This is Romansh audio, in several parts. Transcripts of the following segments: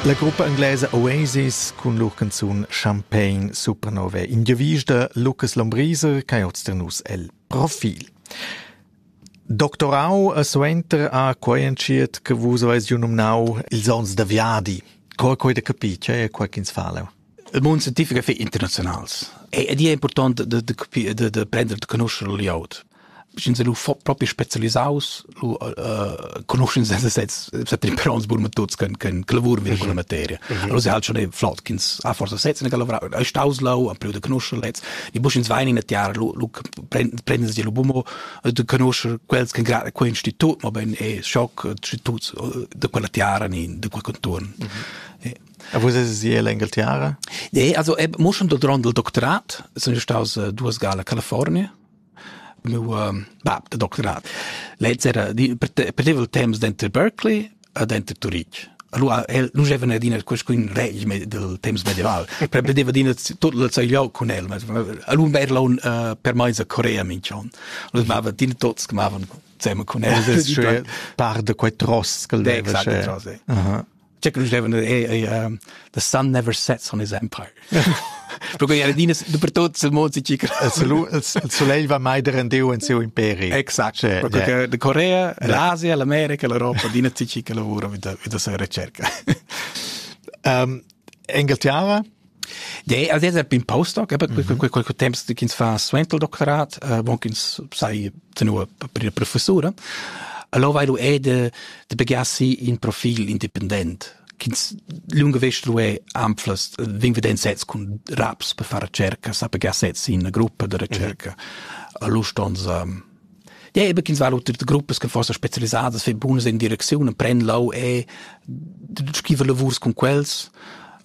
La gruppa inglesa Oasis cun lur canzun Champagne Supernova in giavisch da Lucas Lombriser ch'ei oz da nus el profil. Doctorau a suenter a quei entschiet che vus aveis giu numnau ils onns da viadi. Co ha quei da capir? Che è quei ch'ins fa leu? Il mund scientific è internaziunals ed è impurtant da, da, da, da prender da conoscere il layout. Sch'ins è lu propi spezialisaus, lu uh, conoscens els sezs, set imperons bun metods can can lavur vin con la materia. Allora se halt schon e flot ch'ins ha forsa sezs ne lavura, ei staus lau, am da conoscer lez. Ni bu sch'ins vain in a tiara, lu lu prendens di lu bumo da conoscer quels che grad quei institut, ma ben e schock instituts da quella tiara ni da quel contorn. E vus eis ier l'Engaltiara? Nee, also eb, mo schon durant il doctorat sun io staus uh, duas gala a California. Meu um, bab de doctorat. Lez era di, perdeva il temps denter Berkeley e denter Turitg. Allora el non gevene adina qualcun reg del temps medieval. Per perdeva adina tot il sai liau con el. Allora era un uh, per meis a Corea mincion. Allora mava dina tots che mavan zeme con el. Das ist schön. Par de quei tross che leva. Exact, tross. Aha. particularly given that um, the sun never sets on his empire. Perché era dinas dappertut sul mond si chica. Il soleil va mai der Dieu in siu imperi. Exact. Cioè, perché yeah. la Corea, l'Asia, l'America, l'Europa, dina si chica lavora mit da, mit da sa ricerca. um, Engeltiava De ad es pin postdoc, per quel temps ch'ins fa suenter il doctorat, bon ch'ins sai tenor la professura. Allora vai lu è de de begiassi in profil independent ch'ins lunga vest lu è anflas vin veden sets cun raps per far cerca, sa pegar sets in una gruppa de recerca. Allora stons Ja, eben kins war de Gruppe kan fossa spezialisadas für bunas in Direktionen pren lau e schiver lavurs con quels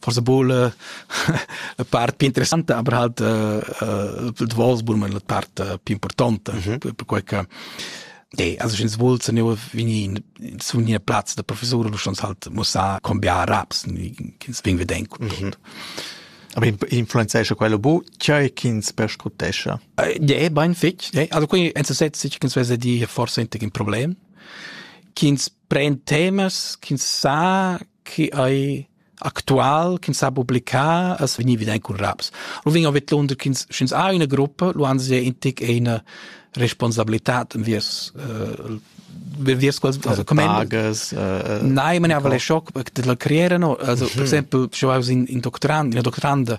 forse buca la, la part più interessante, aber halt uh, uh, du volst buca la part uh, più importante, mm -hmm. per quei che Nee, also schins wohl zu nehmen, wenn ich so in Platz der Professor du schon halt muss sagen, kommen wir Arabs, kins wegen wir denken. Mhm. Aber influenzescha quello bu, cioè ch'ins perscrutescha? Nee, bein fitch. Nee, also qui en so setz sich kins wese di forse inte ein Problem. Kins pren temas ch'ins sa chi ei actual ch'ins sa publicar as vegni evident cun raps. Lu vegn vidlunder ch'ins sch'ins ha ina gruppa, lu han sie in tic ina responsabilität enviers äh, enviers quals also Bages, äh, äh, Nein, man aber le schock de la creere no. Also per mhm. esempio, ich war in in Doktorand, in der Doktorande